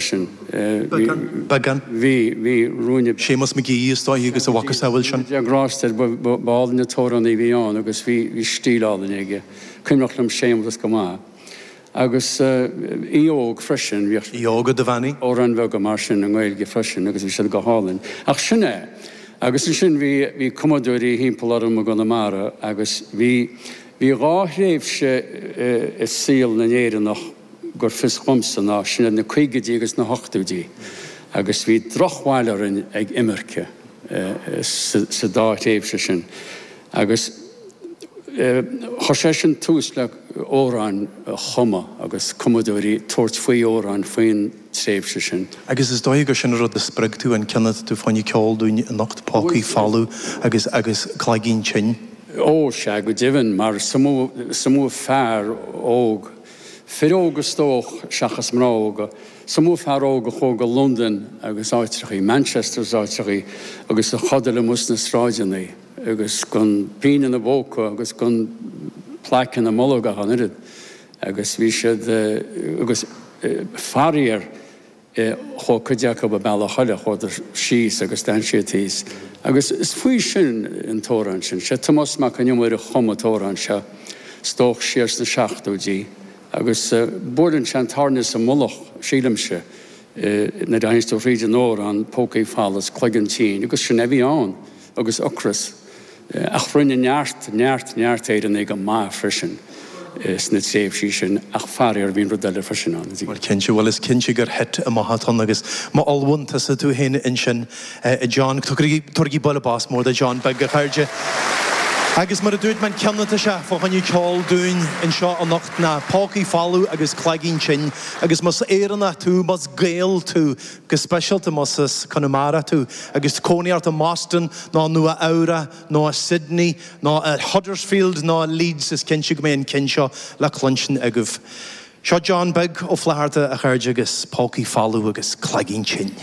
sin. Beagán. Bhí, bhí ruainne. Séamus McGee, is dóigh, agus a mhacasamhail sin. Déana grásta air, ba, ba, ba álainn an t-amhránaí a bhí ann agus bhí, bhí stíl álainn aige. Cuimhneach liom Séamus go maith. Agus eh, Aoife Óg freisin, bhíodh. Aoi óg i do bhean í? amhráin bheaga mar sin i nGaeilge freisin agus bhí siad go hálainn. Ach sin é. Agus ansin bhí, bhí cumadóirí thimpeall orm i gConamara agus bhí, bhí dhá thréimhse eh, i saol na nÉireannach, go bhfios dhomsa ná sin iad na caogaidí agus na hochtóidí agus bhí drochbhail orainn ag imirce sa dá thréimhse sin agus chuir sé sin tús le amhráin a chumadh agus cumadóirí tabhairt faoi amhráin faoin tréimhse sin. Agus is dóigh gur sin an rud a spreag tú, an ceann atá tú fá choinne ceol dúinn anocht, Pócaí Folamh agus agus Cloigeann Tinn. Ó, sea, go deimhin, mar is iomaí fear óg fir óga is dóigh, seachas mná óga, is iomaí fear óg a chuaigh go Londain agus áitreachaí Manchester is áitreachaí agus a chodail amuigh sna sráideannaí agus gan pingin ina bpóca agus gan plaic ina mbolg ach an oiread agus bhí siad agus faraor e Thóg cuid acu a bealach féin chuadar síos agus d'fhan siad thíos. Agus is faoi sin an t-amhrán sin. Sé Tomás Mac an Iomaire a chum an t-amhrán seo, is dóigh siar sna seachtóidí, agus buaileann sé an tairne sa mullach, sílimse, nuair a éisteann tú thríd an amhrán, Pócaí folamh 's cloigeann tinn, agus sin é a bhí ann. agus ocras, ach rinne neart, neart, neart Éireannaigh go maith freisin sna tréimhsí sin, ach faraor, bhí an rud eile freisin ann, a Bhuel, cinnte, bhuel, is cinnte gur thit amach a tonn agus maith, bhuel tusa, tú féin ansin, a John, tabhairigí buille bos mór do John beag, a chairde. Agus mar a dúirt mé, an ceann atá sé fá choinne ceol dúinn anseo anocht ná Pócaí Folamh agus Cloigeann Tinn, agus más Éireannach tú, más Gael tú, go speisialta más as Conamara tú agus cónaí ort i mBoston nó i Nua Eabhrac nó i Sydney nó i Huddersfield nó i Leeds, is cinnte go mbeidh an ceann seo le cluinstin agaibh. Seo John Beag Ó Flatharta a chairde agus pócaí folamh agus cloigeann tinn.